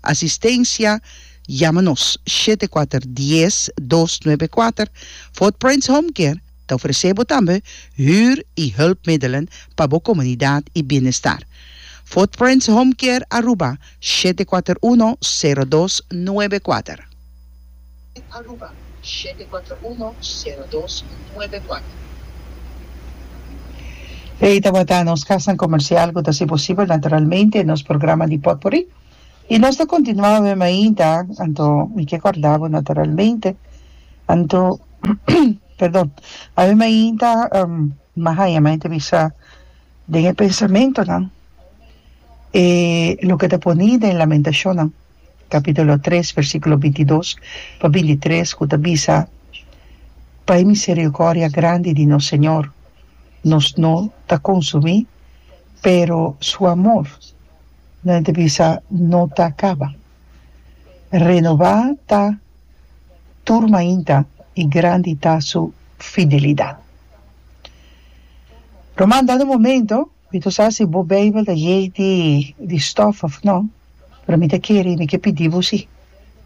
Asistencia, Yama nos shete kuater dies dos nuebe kuater. Footprints Home Care ta ofresé bo tambe huur i hulpmiddelen pa bo komunidat i bienestar. Footprints Home Care Aruba shete kuater uno sero dos nuebe kuater. Aruba shete kuater uno sero dos nuebe kuater. Ei tabata nos kasnan komersial ku ta haci posibel naturalmente nos programa di potpourri. I nos ta kontinuá awor mainta, anto mi ke kòrdá bo naturalmente, anto, perdon, awor mainta mi haña mainta bisa den e pensamentunan e loke ta poni den Lamentashonnan kapítulo tres versíkulo binti dos pa binti tres ku ta bisa, Pa e miseriokordia grandi di nos Señor nos no ta konsumí, pero Su amor No ente bisa no ta caba. Renoba ta tur mainta y grandi ta su fidelidad. Lo manda nu momento mi ta sa si bo bijbel ta yei di stof of no, pero mi ta kere y mi ke pidi bo si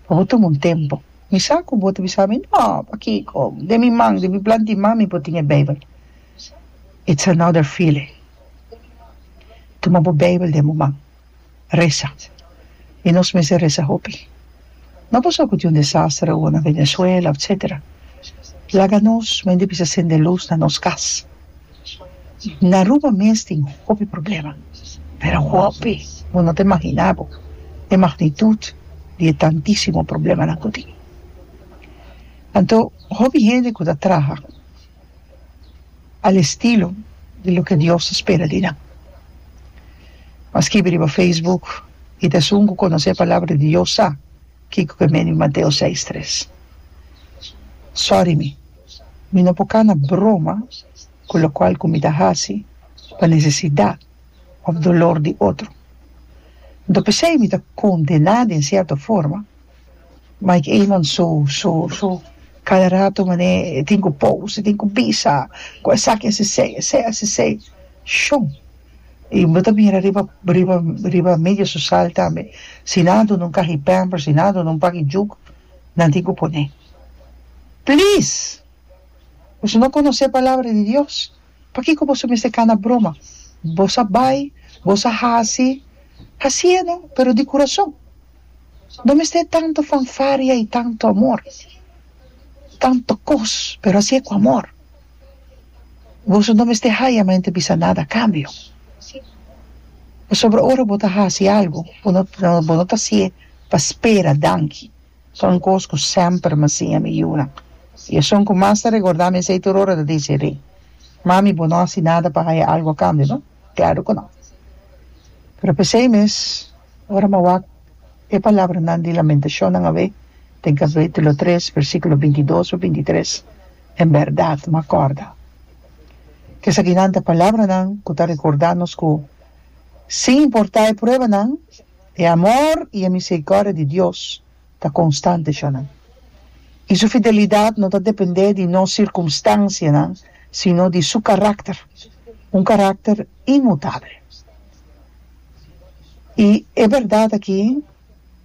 pa bo tuma un tempo. Mi sa cu bo ta bisa mi, No, pakico? Den mi man, den mi plantiman mi por tin e bijbel. It's another feeling. Tuma bo Beibel den bo man. Resa. I nos mester resa hopi. No pasobra ku tin un desastre owo na Venezuela, etcetera. Laga nos mester bisa sende lus na nos kas. Na Aruba mes tin hopi problema, pero hopi. Bo no ta imaginá bo e magnitud di e tantísimo problemanan ku tin. Anto, hopi hende ku ta traha. al estilo di loke Dios ta spera di nan. M'a skibi riba Facebook, I ta esun ku konosé Palabra di Dios sa kiko ku e mean di Mateo seis tres. Sòri mi, mi no por kana broma ku lokual ku mi ta hasi pa nesesidat òf dolor di otro. Anto p'esei mi ta kondená den sierto forma. Mike Eman su su su cada rato mane e tin cu pose e tin cu bisa cu esaki a sisey esey a sisey shum y bo ta mira riba riba riba media social tambe si nan a duna un caji pampers si nan a duna un paki juk nan tin cu pone please pues no conoce palabra de Dios. Pakiko boso mester kana broma? Boso a bai, boso a hasi, hasié no, pero di kurason. No mester tantu fanfaria i tantu amor, tantu kos, pero hasié ku amor. Boso no mester haya men ta bisa nada a kambio, pasobra ora bo ta hasi algu, bo no ta hasié pa spera danki. Son cos cu semper m'ha siña mi yuna. I esun cu mas ta regordá mi esey tur ora ta dici, Ri, mami bo no haci nada pa haya algo a cambio, no? Claro cu no. Pero p'esey mes, ora m'a wak e palabranan di Lamentacionnan awe, den capitulo tres, versiculo binti dos pa binti tres, en berdad m'a corda. Kesakinan ta palabranan cu ta recorda nos cu, sin importá e pruebanan, E amor i e miserikòrdia di Dios ta konstante shò nan, i su fidelidat no ta dependé di nos sirkumstansianan sino di su karakter, un karakter inmutabel. I e bèrdat aki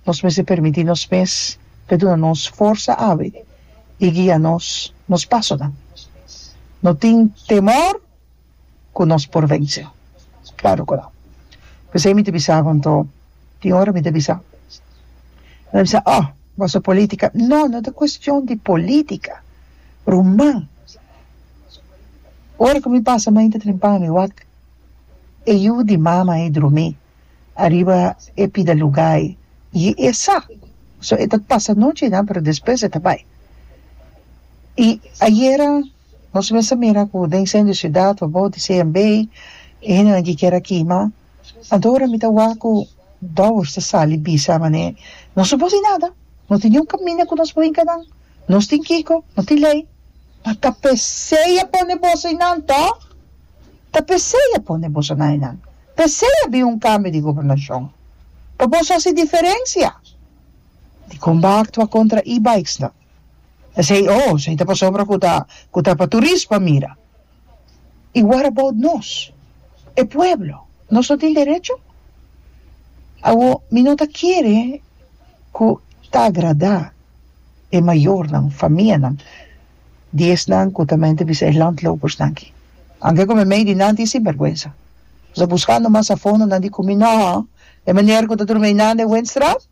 nos mester permití nos mes pa e duna nos forsa abi i guia nos nos pasonan. No tin temor. ku nos por vense? Klaru ku no. P'esei mi ta bisa ku anto tin ora mi ta bisa. Mi ta bisa, Oh, bo sa polítika. No, no ta kuestion di polítika, ruman. Ora ku mi pasa mai intra tren pa mi wak e yu di mama ei drumí ariba e pida lugá ei i e sa. So, e ta pasa anochi nan, pero despues e ta bai. I ayera Nos mester mira cu den centro di ciudad o bou di CMB e hendenan ki kier a kima anto ora mi ta wak cu bouwers ta sali bisa manera nos no por haci nada no tin niun caminda cu nos por hinca nan nos tin kico no tin ley ma ta pesey a pone boso einan to ta pesey a pone boso nan einan pesey a bin un cambio di gobernacion pa boso haci diferencia di con bo a actua contra e-bikes nan. Esei oh, esei ta pasobra ku ta ku ta pa turista mira. I what about nos, e pueblo? Nos no tin derecho? Awo mi no ta kere ku ta agradá e mayornan, famianan di esnan ku ta mente bisa e landlopersnan aki. Anke ku mi mei di nan tin sinvergwensa, pasobra buskando mas a fondo nan di ku mi no e manera ku ta durmi einan den Windstraat.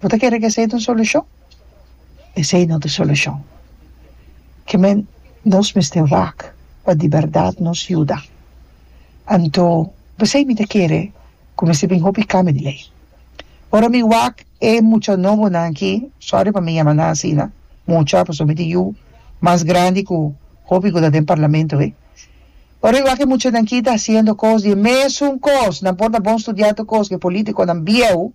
Bo ta kere cu esey ta un solucion? Esey no ta solucion. Ke men nos mester wak pa di berdad nos yuda. Anto, p'esey mi ta kere cu mester bin hopi cambio di ley. Ora mi wak e mucha nobonan aki, sorry pa mi yama nan asina, mucha, pasobra mi tin yu mas grandi cu hopi cu ta den parlamento wey. Ora mi wak e muchanan aki ta haciendo cos di e mesun cos, nan por na bon studia tur cos cu e politiconan bieu.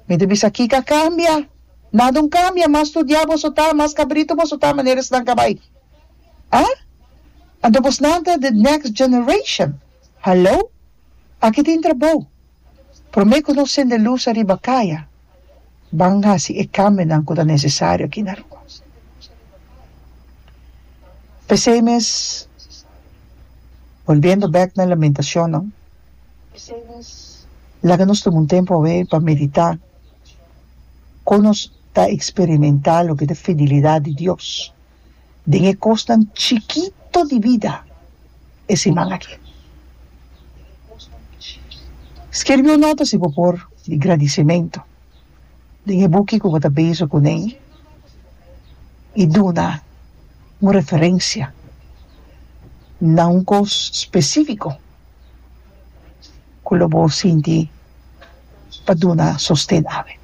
Mi ta bisa, Kiko a kambia? Nada un kambia. Mas studia boso ta, mas kabritu boso ta manera esnan ka bai. Ah? Anto bosnan ta the next generation? Hallo? Aki tin trabou. Promé ku nos sende lus ariba kaya, ban hasi e kambionan ku ta nesesario aki na Aruba. P'esei mes, volviendo bèk na Lamentacionnan. Laga nos tuma un tempu awe pa meditá kon nos ta eksperimentá loke ta fidilidat di Dios den e kosnan chikito di bida e siman aki. Skerbí un nota si bo por di gradisimentu den e buki ku bo ta bezu kuné i duna un referensia na un kos spesífiko. ku lo bo sinti pa duna sosten awe.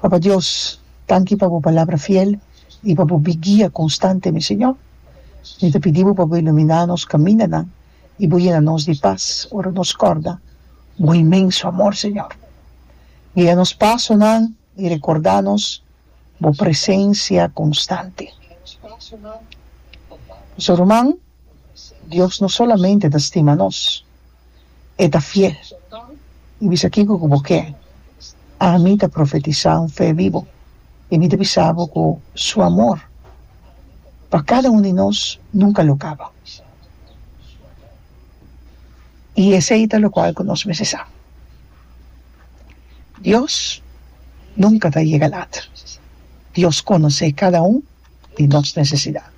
Papa Dios tanki pa bo palabra fiel i pa bo guia konstante mi Señor, mi ta pidi bo pa bo iluminá nos kamindanan i bo yena nos di pas ora nos kòrda bo inmenso amor Señor. Guia nos pasonan i rekordá nos. bo presencia constante. Boso ruman, Dios no solamente ta stima nos, E ta fiel y bisa kico cu bo kier. Ami ta profetisa un fe bibo y mi ta bisa bo cu Su amor pa cada un di nos nunca lo caba. Y esey ta locual cu nos mester sa. Dios nunka ta yega lat. Dios konosé kada un di nos nesesidat.